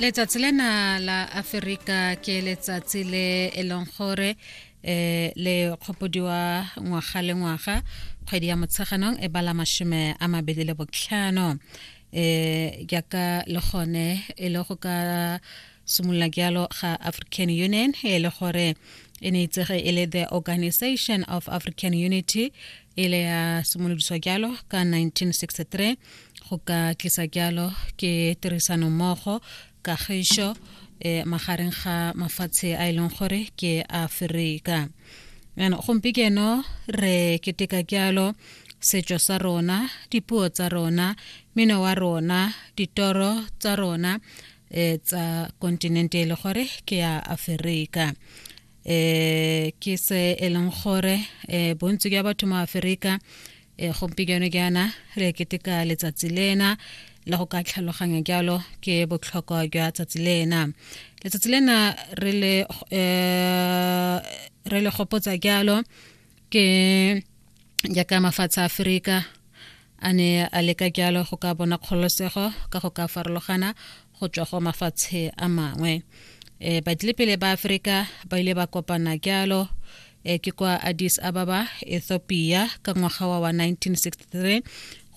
letsatsi lena la aferika ke letsatsi le e leng gore um le kgopodiwa ngwaga le ngwaga kgwedi ya motsheganong e bala mashome a mabedi le botlhano um eh, jaaka le gone e le go ka simolola jalo ga african union e le gore e ne itsege e le the organization of african unity e le ya simolodiswa jalo ka 1963 go ka tlisa jalo ke tirisanommogo kagišo e magareng ga mafatshe a e leng gore ke aferika jaanong gompieno re keteka jalo setso sa rona dipuo tsa rona mino wa rona ditoro tsa rona um tsa kontinente e le gore ke ya aferika eh ke se e leng gore eh bontsi jwa batho mo Aforika eh gompieno jaana re keteka letsatsi lena la go ka tlhaloganya jalo ke botlhokwa jwa tsatsi lena letsatsi lena re le eh re le gopotsa jalo ke jaaka mafatshe a aferika a ne a leka jalo go ka bona kgololosego ka go ka farologana go tswa go mafatshe a mangwe um badilepele ba aferika ba ile ba kopana jalo e ke kwa addis ababa ethiopia ka ngwaga wa wa 1963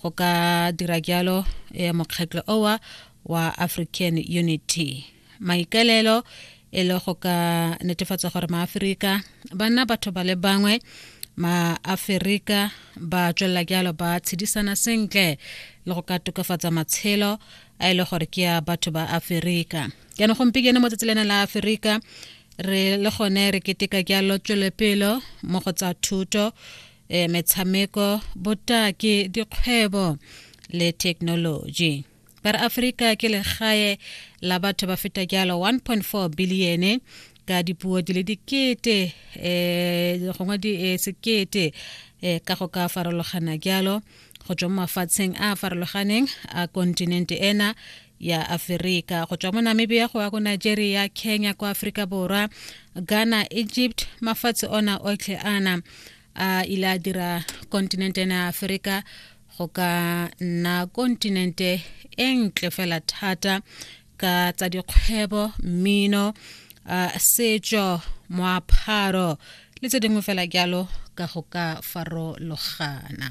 go ka dira jalo um mokgatlho owa wa african unity maikaelelo e le go ka netefatsa gore maaferika ba nna batho ba le bangwe maaferika ba tswelela jalo ba tshedisana sentle le go ka tokafatsa matshelo a e le gore ke ya batho ba aferika jaanong gompieno mo tsatsi lena la aferika re le gone re keteka jalo tswelepelo mo go tsa thuto e metshameko botaki dikgwebo le thekenoloji ka re aforika ke legae la batho ba feta jalo 1.4 biliene ka dipuo di le dikete um gongwe di eh, sekete um ka go ka farologana jalo go tswa mo mafatsheng a a farologaneng a kontinente ena ya aferika go tswa mo namibia go ya ko nigeria kenya kwa aforika borwa ghana egypt mafatshe ona otlhe ana a ile a dira kontinente ena ya aferika go ka nna kontinente e ntle fela thata ka tsa dikgwebo mmino uh, setso moapharo le tse dingwe fela jalo ka go ka farologana